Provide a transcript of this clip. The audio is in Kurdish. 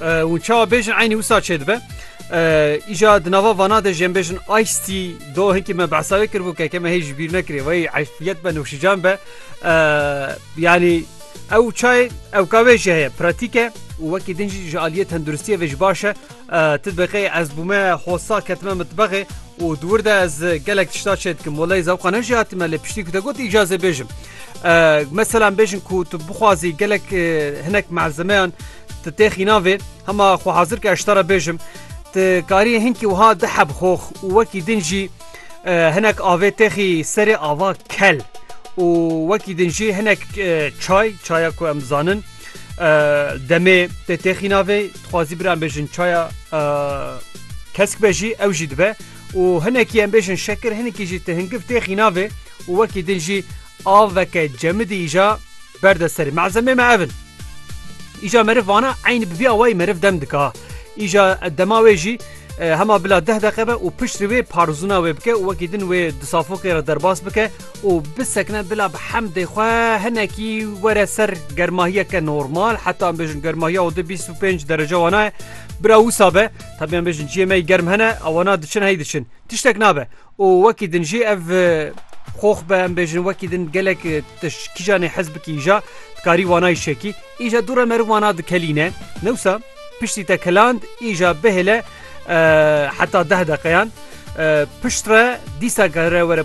Hûn çawa bêjin eynî wisa çêdibe. Îja di nava vana de jên bêjin Aystî do hinkî me behsa wê kiribû ke ke me hê ji bîr nekirê wey eşfiyet be nûşican be yanî ew çayê ewka wê jî heye pratîke û wekî din jî ji aliyê tenduristiyê vê ji baş e tu diqê ez bûme hosa ketime mitbexê û dûr de ez gelek tişta çê dikim welê zewqa ne jî hatime lê piştî ku te got îcazê bêjim meselan bêjin ku tu bixwazî gelek hinek malzemeyan Ti tê xîna vê, hema xwe hazir ke ez ji te re bêjim, ti karî hinkî wiha di hebxox û wekî din jî hinek avê têxî serê ava kel û wekî din jî hinek çay, çaya ku em zanin demê tê tê xîna vê, dixwazî bira em bêjin çaya kesk be jî ew jî dibe û hinekî em bêjin şekir hinkî jî ti hingiv tê xîna vê û wekî din jî aveke cemidî îja Berde serê malzemê me ev in. Îja meriv vana eynî bi vî awayî meriv dem dika. Îja dema wê jî e, hema bila deh deqe be û piştî wê parzûna wê bike û wekî din wê di safokê re derbas bike û bisekine bila bi hemdê xwe hinekî were ser germahiyeke normal heta em bêjin germahiya û di 25 derece wana ye. Bira wisa be tabiyan bêjin ciyê me yî germ hene ewana diçin hey diçin. Tiştek nabe. û wekî din jî ev xox be em bêjin wekî din gelek tişt kîjanê hez bikî îja dikarî wana îşekî îja dû re meriv wana dikelîne newsa piştî te keland îja bihêle heta deh deqeyan pişt re dîsa gere were